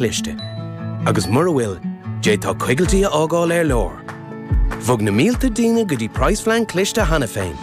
cliste. Agus mura bhfuil, d'fhéadfá coigiltí a fhágáil ar lár. Bhog na mílte daoine go dtí Praghasphlean Cliste cheana féin.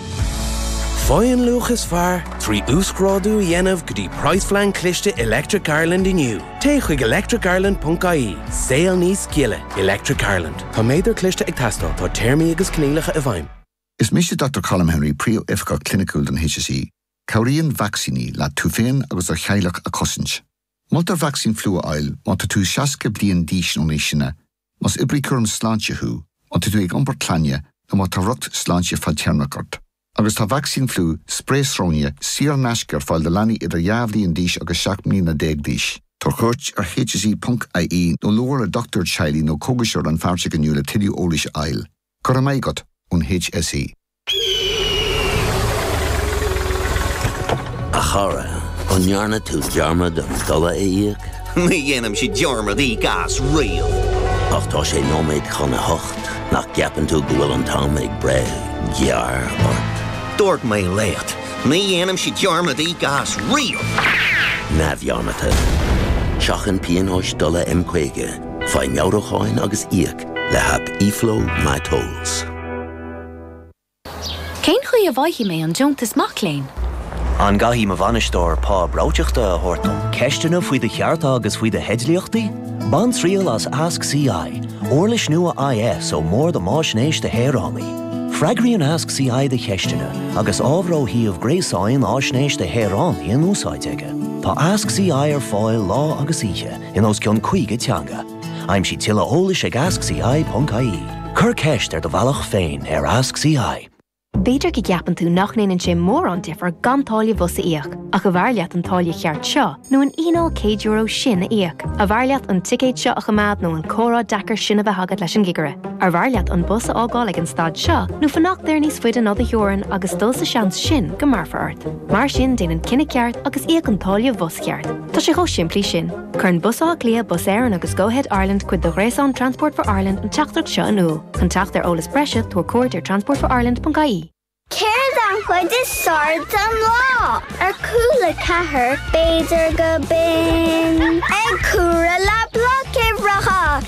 Faigh an luach is fearr trí uasghrádú a dhéanamh go dtí Praghasphlean Cliste Electric Ireland inniu. Téigh chuig electricireland.ie, saol níos gile, Electric Ireland. Tá méadar cliste ag teastáil, tá téarmaí agus coinníollacha i bhfeidhm. Is mise Dochtúir Colm Henry, Príomhoifigeach Cliniciúil don HSE. Cabhraíonn vacsaíní leat tú féin agus do theaghlach a chosaint. Moltar vacsaín fliú a fháil má tá tú 60 bliain d'aois nó níos sine, más oibrí cúraim sláinte thú, má tá tú ag iompar clainne nó má tá riocht sláinte fadtéarmach ort. Agus tá vacsaín fliú, sprae sróine, saor in aisce ar fáil do leanaí idir dhá bhliain d'aois agus seacht mbliana déag d'aois. Tabhair cuairt ar hse.ie nó labhair le dochtúir teaghlaigh nó cógaiseoir rannpháirteach inniu le tuilleadh eolais a fháil. Go raibh maith agat, ón HSE. A chara, an ndearna tú dearmad an dola a íoc? Ní dhéanaimse dearmad íoc go síoraí. Ach tá sé nóiméad chun a hocht, nach gceapann tú go bhfuil an t-am ag breith gearr ort? Dúirt mé leat, ní dhéanaimse dearmad íoc go síoraí! Neamhdhearmadta. Seachain pionóis dola M50, faigh meabhrúcháin agus íoc. le haip eFlow My Tolls. Cén chaoi a bhfaighidh mé an deontas mac léinn? An gcaithfidh mo bhainisteoir pá breoiteachta a thabhairt dom? Ceisteanna faoi do chearta agus faoi do theidlíochtaí? Bain triail as Ask CI, uirlis nua IS ó Bhord um Fhaisnéis do Shaoránaigh. Freagraíonn Ask CI do cheisteanna agus ábhar ó shuíomh gréasáin Fhaisnéis do Shaoránaigh in úsáid aige. Tá Ask CI ar fáil lá agus oíche in os cionn 50 teanga. Aimsigh tuilleadh eolais ag AskCI.ie. Cuir ceist ar do bhealach féin ar AskCI. B'fhéidir go gceapann tú nach ndéanann sé mórán difir gan táille bhus a íoc, ach arbh fhearr leat an táille cheart seo nó an fhíneáil €100 sin a íoc? Arbh fhearr leat an ticéad seo a choimeád nó an comhrá deacair sin a bheith agat leis an gcigire? Arbh fhearr leat an bus a fhágáil ag an stad seo nó fanacht air níos faide ná do theorainn agus dul sa seans sin go mbéarfar ort? Mar sin déan an cinneadh ceart agus íoc an táille bhus cheart. Tá sé chomh simplí sin. Cuireann Bus Átha Cliath, Bus Éireann agus Go-Ahead Ireland cuid de ghréasán Transport for Ireland an teachtaireacht seo in iúl. Chun teacht ar eolas breise, tabhair cuairt ar transportforireland.ie. Céard an chuid is fearr den lá? Ar cúl a ceathair, b'fhéidir go binn. Ag súgradh le bloic uimhreacha.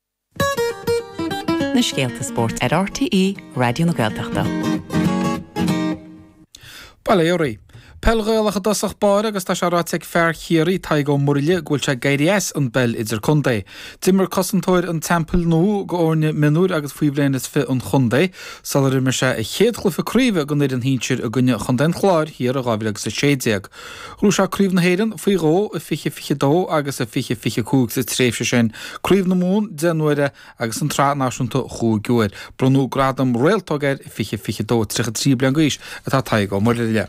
na scéalta spóirt ar RTÉ Raidió na Gaeltachta. Bail ó Dhia oraibh. Peil Ghaelach i dtosach báire agus tá sé ráite ag fear Chiarraí, Tadhg Ó Muirthile, go bhfuil sé ag éirí as an bpeil idircontae. D'imir cosantóir an Teampaill Nua d'fhoirne mionúir agus faoi bhliain is fiche an chontae sular imir sé a chéad chluiche craoibhe don fhoireann shinsir i gcoinne chontae an Chláir thiar in 2016. Ghnóthaigh sé Craobh na hÉireann faoi dhó, i 2022 agus i 2025 sa tréimhse sin, Craobh na Mumhan deich n-uaire agus an tSraith Náisiúnta chúig uair. Bronnadh gradam réaltóg air i 2022. 33 bliain d'aois atá Tadhg Ó Muirthile.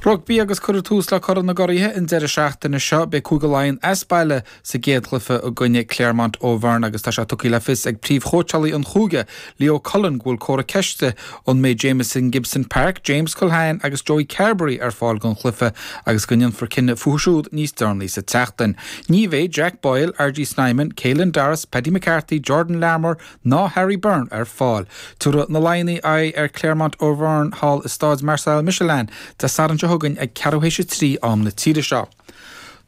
Rugbaí agus cuirfear tús le Corn na gCuraithe an deireadh seachtaine seo. Beidh Cúige Laighean as baile sa gcéad chluiche i gcoinne Clermont Auvergne agus tá sé tugtha le fios ag príomhchóitseálaí an chúige, Leo Cullen, go bhfuil comhartha ceiste an mbeidh Jamison Gibson-Park, James Culhane agus Joey Carbery ar fáil don chluiche agus go ndéanfar cinneadh fúthu siúd níos deireanaí sa tseachtain. Ní bheidh Jack Boyle, RG Snyman, Caelan Doris, Paddy McCarthy, Jordan Larmour ná Harry Byrne ar fáil. Tabharfaidh na Laighnigh aghaidh ar Clermont Auvergne thall i Staid Marcel Michelin Dé Sathairn seo chugainn ag ceathrú théis a trí am na tíre seo.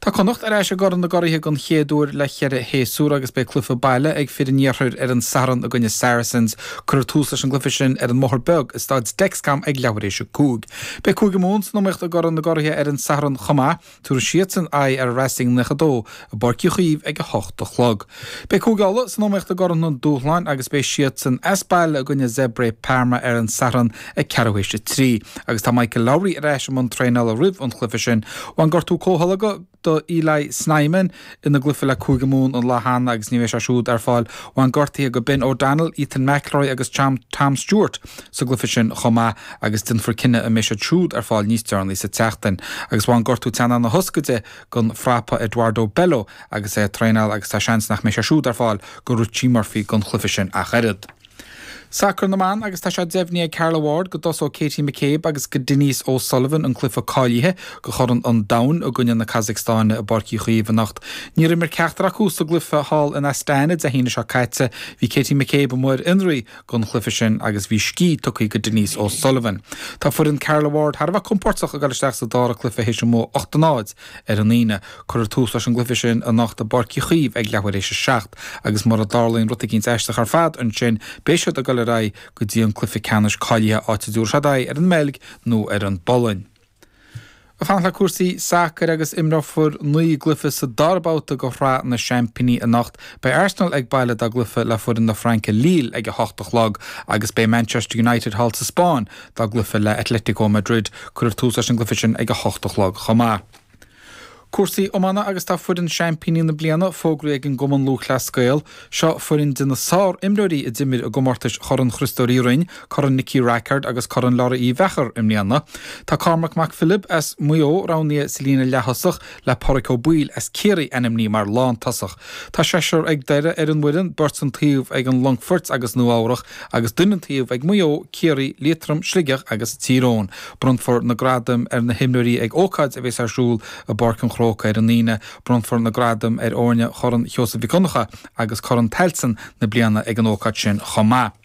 Tá Connacht ar ais i gCorn na gCuraithe den chéad uair le ceithre shéasúr agus beidh cluiche baile ag fir an iarthair ar an Satharn i gcoinne Saracens. Cuirfear tús leis an gcluiche sin ar an mBóthar Beag i Staid Dexcom ag leathuair éis a cúig. Beidh Cúige Mumhan san iomaíocht i gCorn na gCuraithe ar an Satharn chomh maith. Tabharfaidh siadsan aghaidh ar Racing 92 i bPáirc Uí Chaoimh ag a hocht a chlog. Beidh Cúige Uladh san iomaíocht i gCorn an Dúshláin agus beidh siadsan as baile i gcoinne Zebre Parma ar an Satharn ag ceathrú théis a trí. Agus tá Michael Lowry ar ais i mbun traenála roimh an chluiche sin. Bhain gortú comhtholgadh do Eli Snyman ina gcluiche le Cúige Mumhan an lá cheana agus ní bheidh sé siúd ar fáil. Bhain gortuithe go Ben O'Donnell, Ethan McIlroy agus Tom Stewart sa gcluiche sin chomh maith agus déanfar cinneadh an mbeidh siad siúd ar fáil níos deireanaí sa tseachtain. Agus bhain gortú teannáin na hioscaide don frapa Eduardo Bello agus é ag traenáil agus tá seans nach mbeidh sé siúd ar fáil go Richie Murphy don chluiche sin ach oiread. Sacar na mBan agus tá sé deimhnithe ag Carla Ward go dtosóidh Katie McCabe agus go Denise O Sullivan an cluiche cáilithe go Chorn an Domhain i gcoinne na Casacstáine i bPáirc Uí Chaoimh anocht. Níor imir ceachtar acu sa gcluiche thall in Astana Dé hAoine seo caite. Bhí Katie McCabe mar ionadaí gon chluife sin agus bhí scíth tugtha go Denise O Sullivan. Tá foireann Carla Ward thar a bheith compordach ag dul isteach sa dara cluife théis a mbua 8 a 0 ar an Aoine. Cuirfear tús leis an gcluife sin anocht i bPáirc Uí Chaoimh ag leathuair éis a seacht agus mura dtarlaíonn rud eicínt aisteach ar fad ansin beidh siad ag dul ar aghaidh go dtí an cluife ceannais cáilithe áit a dtabharfaidh siad aghaidh ar an mBeilg nó ar an bPolainn. Ag fanacht le cúrsaí sacair agus imreofar naoi gcluiche sa dara babhta de Shraith na Seaimpíní anocht. Beidh Arsenal ag baile dá gcluiche le foireann na Fraince Lille ag a hocht a chlog agus beidh Manchester United thall sa Spáinn dá gcluiche le Atlético Madrid. Cuirfear tús leis an gcluiche sin ag a hocht a chlog chomh maith. Cúrsaí iomána agus tá foireann Seaimpíní na Bliana fógraithe ag an gCumann Lúthchleas Gael. Seo foireann de na sár-imreoirí a d'imir i gcomórtais Chorn Chríostóir Uí Rinn, Corn Nicky Rackard agus Corn Lory Uí Mheachair i mbliana. Tá Cormac Mac Philib as Maigh Eo roghnaithe sa líne leath-thosach le Páraic Ó Baoill as Ciarraí ainmnithe mar lán-tosach. Tá seisear ag Doire ar an bhfoireann, beirt an taobh ag an Longfoirt agus Nua Eabhrach agus duine an taobh ag Maigh Eo, Ciarraí, Liatroim, Sligeach agus Tír Eoghain. Bronnfar na gradaim ar na himreoirí ag ócáid a bheas ar siúl i bPáirc an Chrócaigh ar an Aoine. Bronnfar na gradaim ar fhoirne Chorn Sheosaimh Mhic Dhonncha agus Corn Tailteann na bliana ag an ócáid sin chomh maith.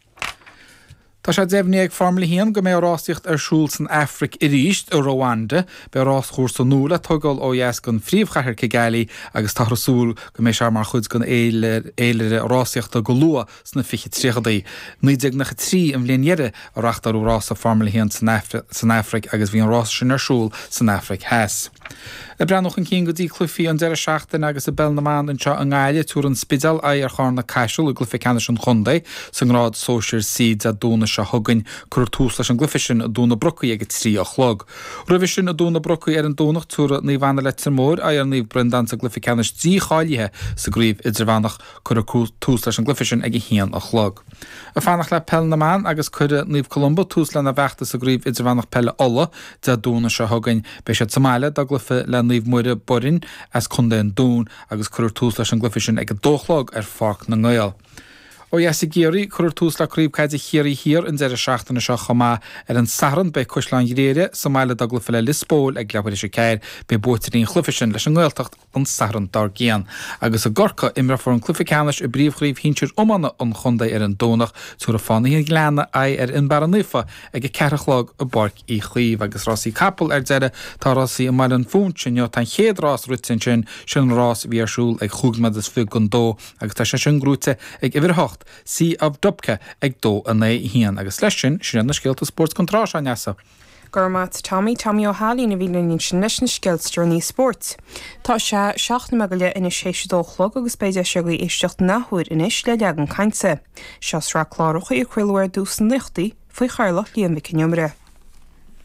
Tá sé deimhnithe ag Foirmle a hAon go mbeidh rásaíocht ar siúl san Afraic arís, i Rwanda. Beidh rás-chúrsa nua le tóigeáil ó dheas den phríomhchathair Kigali agus táthar ag súil go mbeidh sé mar chuid den fhéilire rásaíochta go luath. sna fichid tríochadaí. Naoi déag naocha trí an bhliain dheiridh a reachtáileadh rása Foirmle a hAon san Afraic agus bhí an rása sin ar siúl san Afraic Theas. Ag breathnú chun cinn go dtí cluichí an deireadh seachtaine agus i bPeil na mBan anseo i nGaillimh, tabharfaidh an Spidéal aghaidh ar Charna Caiseal i gcluiche ceannais an chontae sa ngrád sóisir C Dé Domhnaigh seo chugainn. Cuirfear tús leis an gcluiche sin i dTóin na Brocaí ag a trí a chlog. Roimhe sin i dTóin na Brocaí ar an Domhnach, tabharfaidh Naomh Anna Leitir Móir aghaidh ar Naomh Breandán sa gcluiche ceannais dícháilithe sa gcraobh idirmheánach. Cuirfear tús leis an gcluiche sin ag a haon a chlog. Ag fanacht le Peil na mBan agus cuirfidh Naomh Columba tús lena bhfeachtas i gCraobh Idirmheánach Peile Uladh Dé Domhnaigh seo chugainn. Beidh siad sa mbaile dá gcluiche le Naomh Muire, Boirinn, as Contae an Dúin agus cuirfear tús leis an gcluiche sin ag a dó a chlog ar Pháirc na nGael. Ó dheas i gCiarraí, cuirfear tús le Craobh Caide Chiarraí Thiar an deireadh seachtaine seo chomh maith. Ar an Satharn beidh Caisleán Ghriaire sa mbaile dá gcluiche le Lios Póil ag leathuair théis a ceathair. Beidh buaiteoirí an chluiche sin leis an nGaeltacht an Satharn dár gcionn, agus i gCorcaigh, imreofar an cluiche ceannais i bpríomhchraobh shinsir iomána an chontae ar an Domhnach, tabharfaidh Fánaithe an Ghleanna aghaidh ar Fhionnbarra Naofa ag a ceathair a chlog i bPáirc Uí Chaoimh. Agus rásaí capall ar deireadh, tá rásaí i mBaile Phúinse inniu, tá an chéad rás rite ansin, sin an rás a bhí ar siúl ag chúig nóiméad is fiche don dó, agus tá sé sin gnóite ag uimhir a hocht, Sea of Dubcek, ag dó in aghaidh a haon. Agus leis sin, sin iad na scéalta spóirt den tráth seo, a Neasa. Go raibh maith agat Tommy, Tommy Ó hAilín a bhí linn ansin leis na scéalta is deireanaí spóirt. Tá sé seacht nóiméad go leith anois théis a dó a chlog agus beidh deis agaibh éisteacht in athuair anois le Leagan Cainte. Seo sraith cláracha a craoladh ar dtús sna naochaidí faoi chathaoirleacht Liam Mhic Con Iomaire.